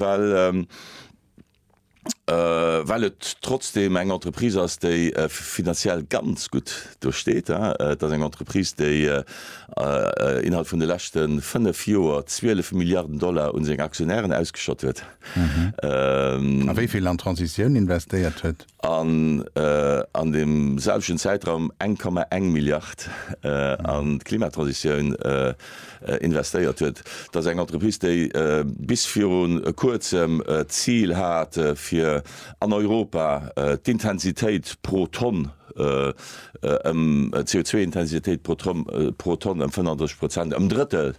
well well et trotzdem eng Entreprise ass, déi finanziell ganz gutt do steet. Et ass eng Entreprise, déi innerhalb vun de leschte fënnef Joer 12 Milliarden Dollar un seng Aktionären ausgeschott huet. A wéi vill an d'Transitioun investéiert huet. an an deem selwechten Zäitraum eng Komma eng Milliard an d'Klimatransitioun investéiert huet. Dat ass eng Entreprise, déi bis viru Kuerzem d'Zil hat, fir an Europa d'Intensitéit pro Tonn ëm, d'CO2-Intensitéit pro Tonn ëm 35 Prozent, ëm Drëttel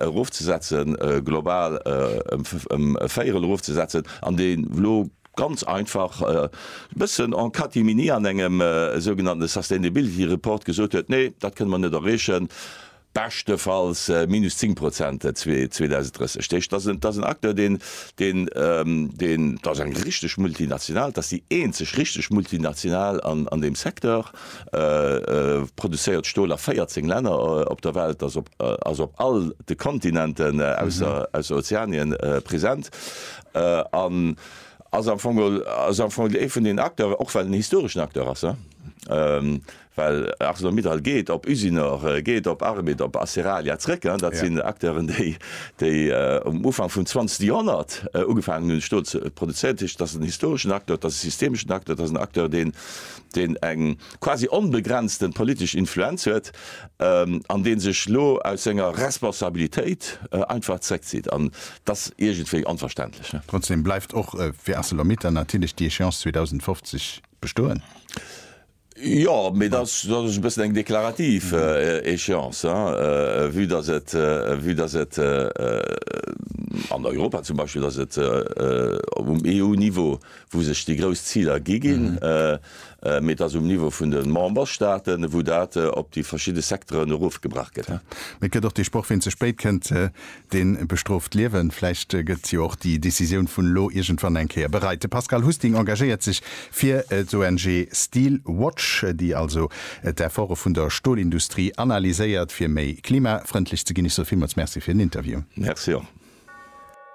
erofzesetzen, global ëm e Véierel erofzesetzen, an déi elo Ganz einfach, e bëssen en Katimini an engem sougenannte Sustainability Report gesot huet, nee, dat kënne mer net erreechen, beschtefalls minus 10 Prozent 2030. Dat ass en Acteur, deen, dat ass eng richteg Multinational, dat ass déi eenzeg richteg Multinational an deem Secteur, produzéiert Stol a 14 Länner op der Welt, ass op all de Kontinenten ausser Ozeanien present. an ass am Fong ass am Fong ee vun den Acteuren, och well en historeschen Acteur ass, well ArcelorMittal geet op Usinor, geet op Arbed, op Aceralia zrëck. Dat sinn Acteuren, déi déi um Ufank vum zwanzegste Joerhonnert ugefaangen hunn, Stol ze produzéieren. Dat heescht, et ass en historeschen Acteur, et ass e systemeschen Acteur, et ass en Acteur, deen deen eng, quasi onbegrenzten politesch Influenz huet, an deen sech elo aus senger Responsabilitéit einfach zréckzitt. An et ass iergendwéi onverständlech. Trotzdem bleift och fir Arcelor-Mittal natierlech déi Échéance 2050 bestoen. Jo, mee dat ass e bëssen eng deklarativ Échéance, vue dass et, vue dass et an Europa zum Beispill, dass et um EU-Niveau, wou sech déi grouss Ziler gi ginn, Mee et ass um Niveau vun de Memberstaaten, wou dat op déi verschidde Secteuren erofgebrach gëtt. Mee et gëtt och dee Sproch, Ween ze spéit kënnt, dee bestrooft d'Liewen. Vläicht gëtt jo och déi Decisioun vun elo iergendwann eng Kéier bereit. De Pascal Husting engagéiert sech fir d'ONG Steel Watch, déi also d'Efforte vun der Stolindustrie analyséiert, fir méi klimafrëndlech ze ginn. Ech soe villmools Merci fir den Interview. Merci och.